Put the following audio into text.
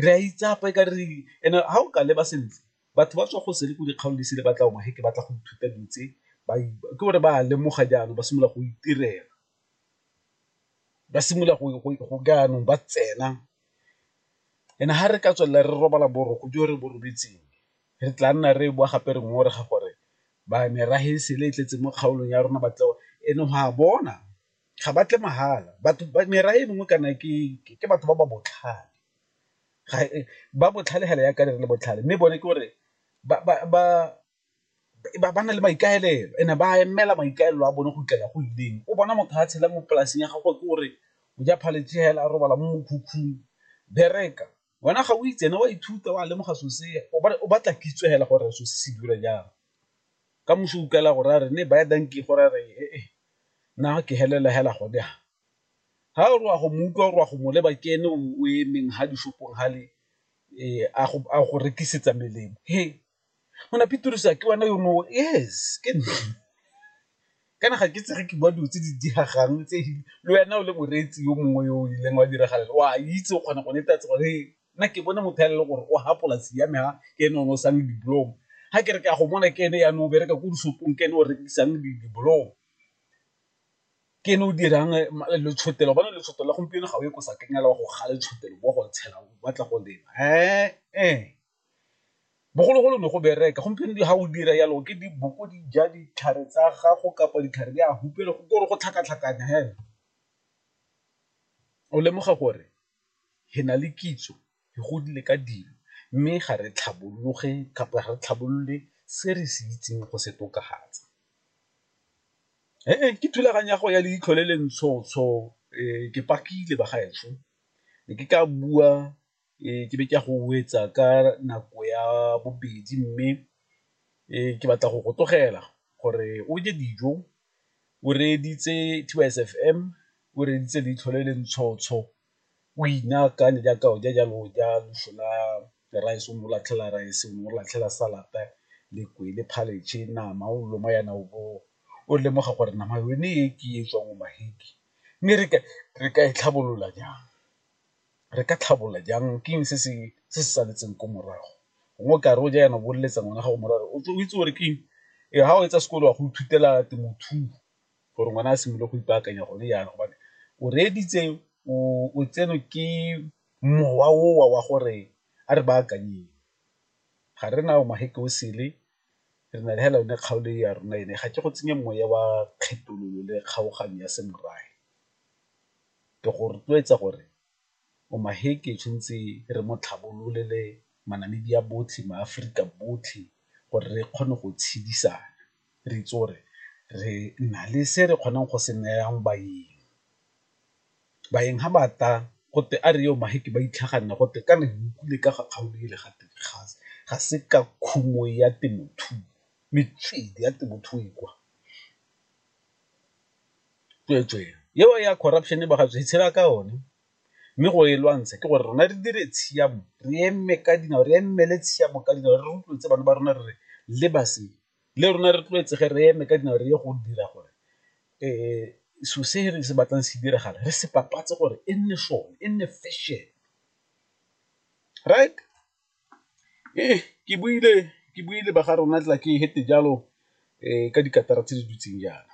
Re a itsapa e ka re and ha o ka leba sentle batho ba tswa go sele ko dikgaolo di sele ba tla he ke batla go ithuta dilo tse ke gore ba a lemoga jaanong ba simolola go itirela, ba simolola go jaanong ba tsena and ha re ka tswelela re robala boroko jo re bo robetseng re tla nna re boa gape re ngongorega gore ba merafe e sele e tletse mo kgaolong ya rona e ne go a bona. ga ba tle mahala batho merafe e mengwe kana ke batho ba ba botlhale ba botlhale fela jaaka re le botlhale mme bone ke gore ba na le maikaelelo and-e ba emela maikaelelo a bone go fitlhela go ileng. O bona motho a tshela mo polasing ya gagwe ke gore o ja phaletšhe fela, a robala mo mokhukhung, bereka. Wena ga o itse ene o a ithuta o a lemoga so se o batla kitso hela gore so se se dira jang. Ka moso o utlwela go raya re ne baya dankie go raya re ee nna ke helela hela gone ha. Ha o re wa go mo utlwa o re wa go mo leba ke ene o emeng ha di-shop-ong hale a go rekisetsa melemo . Ngwana Pitirusi a ke wena yo no yes ke nna, kana ga ke itse ge ke bua dilo tse di diregang tse le wena o le moreetsi yo mongwe yo o ileng wa diragalela o a itse o kgona go netefatsa gore nna ke bone motho fela le gore o ha polasi ya me ha ke ene o ne o sang dibolomo, ga ke re ke a go bona ke ene ya no bereka ko dishopong ke ene o rekisang dibolomo, ke ene o dirang letshotelwa bona letshogo la gompieno ga o ye ko sakeng fela wa go kga letshogo wa go tshela o batla go lema . Bogologolo ne go bereka, gompieno ga o dira jalo ke diboko di ja ditlhare tsa gago kapa ditlhare di a hupela go gore go tlhakatlhakanya fela. O lemoga gore re na le kitso re godile ka dilo mme ga re tlhabologe kapa re tlhabolole se re se itseng go se tokafatsa. Ke thulaganyo ya go ya le itlhole le ntshotsho ke pakile bagaetsho ne ke ka bua. ke be ke a go etsa ka nako ya bobedi mme ke batla go go tlogela gore o je dijo, o reeditse T_Y_S_F_M, o reeditse leitlho le le ntshotsho, o inaakanye jaaka o ja jalo o ja leswi la rice o ne o latlhela rice, o ne o latlhela salad-te le kwele, khabetšhe, nama o loma yana o bo o lemoga gore nama yone e ke e tswang o mme re ka e tlhabolola jang. re ka tlhabolola jang ke eng se se saletseng ko morago, gongwe o kare o ja jaana o bo o leletsa ngwana gago mora gore o tle o itse gore ke eng e ga o etsa sekolo wa go ithutela temothuo gore ngwana a simolole go ipaakanya gone jaana gobane o reeditse o tsenwe ke mowa o wa wa gore a re baakanyeng. Ga re na re na le hela yone kgaolo ya rona ene ga ke go tsenye moya wa kgethololo le kgaoganyo ya semorafe. Ke go rotloetsa gore Omaheke tshwantse re mo tlhabololele maNamibia botlhe, maAforika botlhe gore re kgone go tshedisana re itse gore re na le se re kgonang go se nayang baeng. Baeng ga ba tla gote a re Omaheke ba itlhaganela gote kana re utlwile ka ga kgaolo ele gate ga se ka khumo ya temothuo, metswedi ya temothuo e kwa. tsweetswee eo ya corruption e re itshela ka one mme go e lwantsha ke gore rona re dire tshiamo re eme ka dinao re emele tshiamo ka dinao re rotloetse bana ba rona re re le base le rona re tlwaetsege re eme ka dinao re ye go dira gore um so se re se batlang se diragala re se papatse gore e nne sone e nne fashion right. Ee, ke buile ke buile ba ga rona tla ke fete jalo ka dikatara tse di dutseng jaana.